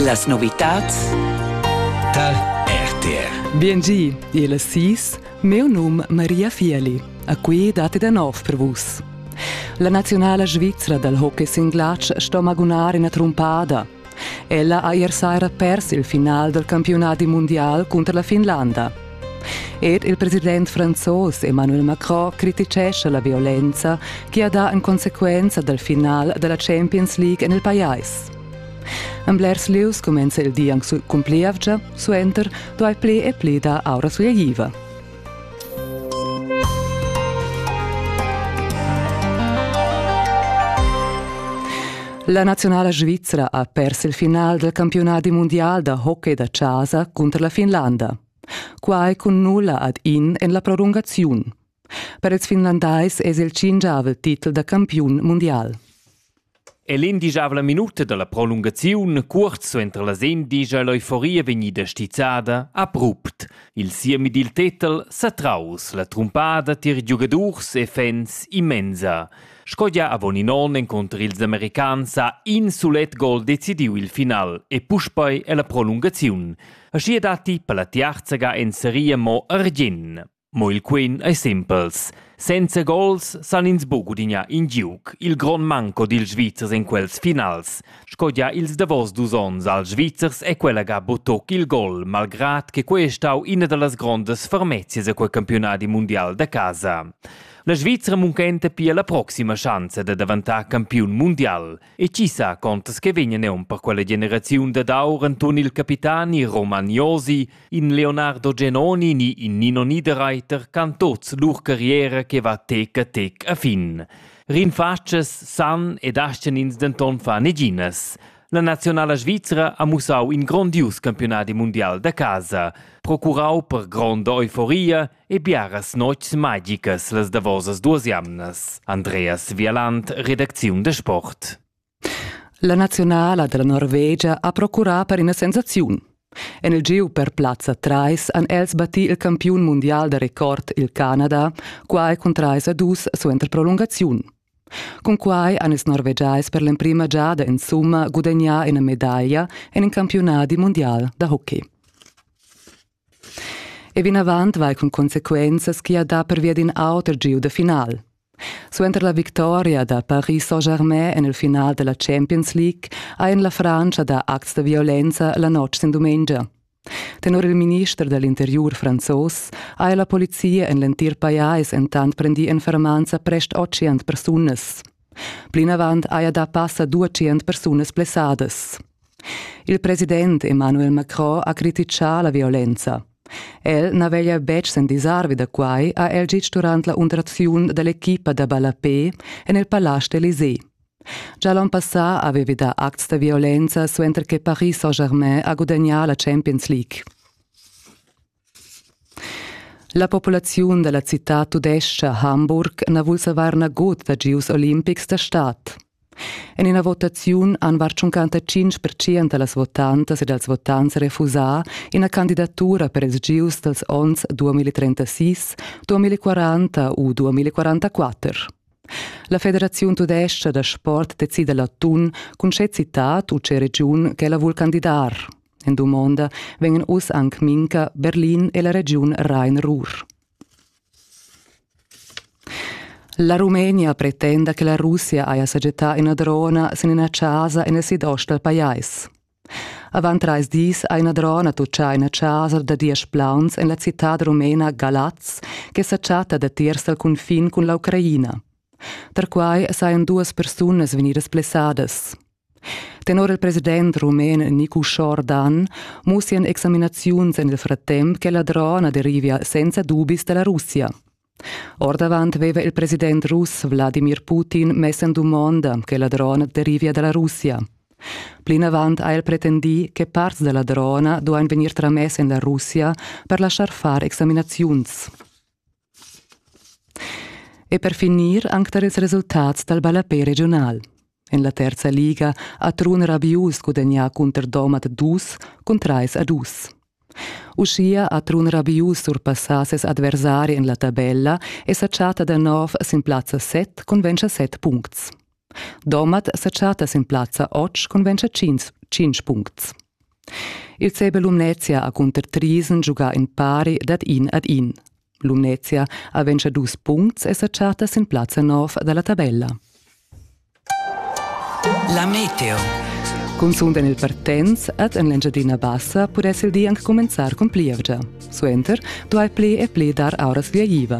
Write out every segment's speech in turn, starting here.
Las novitads tar RTR. Biengi, il sis, meu num Maria Fieli. A qui date da nov per vus. La nazionala svizra dal hockey singlatsch sto magunar ina trumpada. Ella ha ier saira pers il final dal campionat mundial cunter la Finlanda. Er il president franzos Emmanuel Macron crititgescha la violenza che ha dà en consequenza dal final da la Champions League en il pajais. En blers lieus cumenza il di anc cun plievgia, suenter duai pli e pli dar aura sulegliva. La naziunala svizra ha pers il final del campiunadi mundial da hockey da chasa cunter la Finlanda. Quai cun nulla ad in en la prolungaziun. Per ils finlandais es il cingiavel titel da campiun mundial. E l'indigiabla minuta dalla prolungaziun, cuorz suenter la sen, digia l'euforia vegnida stizzada abrupt. Il siemi dil tetel sa traus la trumpada tier giugadurs e fans immensa. Sco gia avon in onn encunter ils americans ha in sulet gol decidiu il final e puspei è la prolungaziun. Aschi datti per la tiarzaga en seria mo argien. Mo il quin ei simpels. Senza gols san ins buca gudignar in giug, il grond manco dils Svizzers in quels finals. Sco gia ils davos dus onns als Svizzers è quella ga butoc il gol, malgrad che quei è stau ina dallas grondas fermezias a quei campionadi mundial da casa. La Svizra munchenta pia la proxima schanza da daventar campiun mundial. E chi sa contas che vegna neun per quella generaziun dad aur Anton il capitani Roman Josi, in Leonardo Genoni ni in Nino Niederreiter can tots lur carriera che va tec a tec a fin. Rinfatschas san ed ascenins denton fa neginas. La nazionala svizra ha mussau in grondius campionadi mundial da casa, procurau per gronda euforia e biaras notgs magicas las davosas duas jamnas. Andreas Vialand, redacziun de sport. La nazionala della Norvegia ha procurà per ina sensaziun. En il giu per plazza 3 han els batti il campiun mondial da record il Canada, quai cun 3 a 2 suenter prolungaziun. Con quai han ils norvegiais per l'emprima giada in summa gudagnà ina medaglia en in campionat mundial da hockey. E vinavant vai cun consequenzas ch'i ha dà pervia d'in auter giu da final. Suenter la victoria da Paris Saint-Germain en il final da la Champions League ha en la Frantscha dà acts da violenza la notg sin dumengia. Tenor il minister da l'interiur franzos ha la polizia en l'entir pajais entant prendì en fermanza prest 800 persunas. Plinavant haja dà passa duatschient persunas blessadas. Il president Emmanuel Macron ha crititgà la violenza. El na veglia betg s'endisarvi da quai, ha el gitg durant la underaziun da l'equipa da ballapé en il Palais d'Elysée. Già l'onn passà avevi dà acts da violenza suenter che Paris Saint-Germain ha gudagnà la Champions League. La populaziun dalla citad tudescha Hamburg na vul savar nagut da gieus olimpics da stad. En ina votaziun han var 55 percent da las votantas e dals votants refusà ina candidatura per ils gieus dals onns 2036-2040 u 2044. La Federaziun tudescha da sport decida l'atun cun tge citad u tge regiun ch'ella vul candidar. En dumonda vegnan uss anc Minca, Berlin e la regiun Rhein-Ruhr. La Rumenia pretenda che la Russia haja sajettà ina drona sin ina chasa en il sidost dal pajais. Avant trais dis ha ina drona tutgà ina chasa da diesch plauns en la citad rumena Galaz che sa chatta datiers dal cunfin cun l'Ucraina. Tar quai sajan duas persunas vegnidas blessadas. Tenor il president rumen Nicu Schordan mussian examinaziuns en il frattemp che la drona derivia senza dubis da la Russia. Ordavant aveva il president russ Wladimir Putin mess en dumonda che la drona derivia da la Russia. Plinavant ha el pretendì che parts da la drona duain vegnir tramess en la Russia per laschar far examinaziuns. E per finir anc tar ils resultats dal ballapè regiunal. En la terza liga ha Trun Rabius gudagnà cunter Domat dus cun trais a dus. Uschia ha Trun Rabius surpassà ses adversari en la tabella e sa chatta da nov sin plazza set cun 27 puncts. Domat sa chatta sin plazza otg conventscha tschintg, tschintg puncts. Il CB Lumnezia ha cunter Trisen giugà in pari dad in ad in. Lumnezia ha ventscha dus puncts e sa chatta sin plazza nov dalla tabella. La meteo. Cunzunt en il Partenz ed en l'Engiadina Bassa pudess il di anc cumenzar cun plievgia. Suenter duai pli e pli dar auras via iva.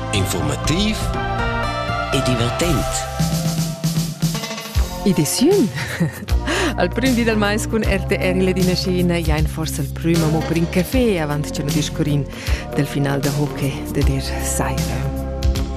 Informativ e divertent. Ediziun Al prim di dal mais cun RTR il Dinascina jain forsa il prüm amo per in café avant cha no discurrin del final da hockey de der Seire.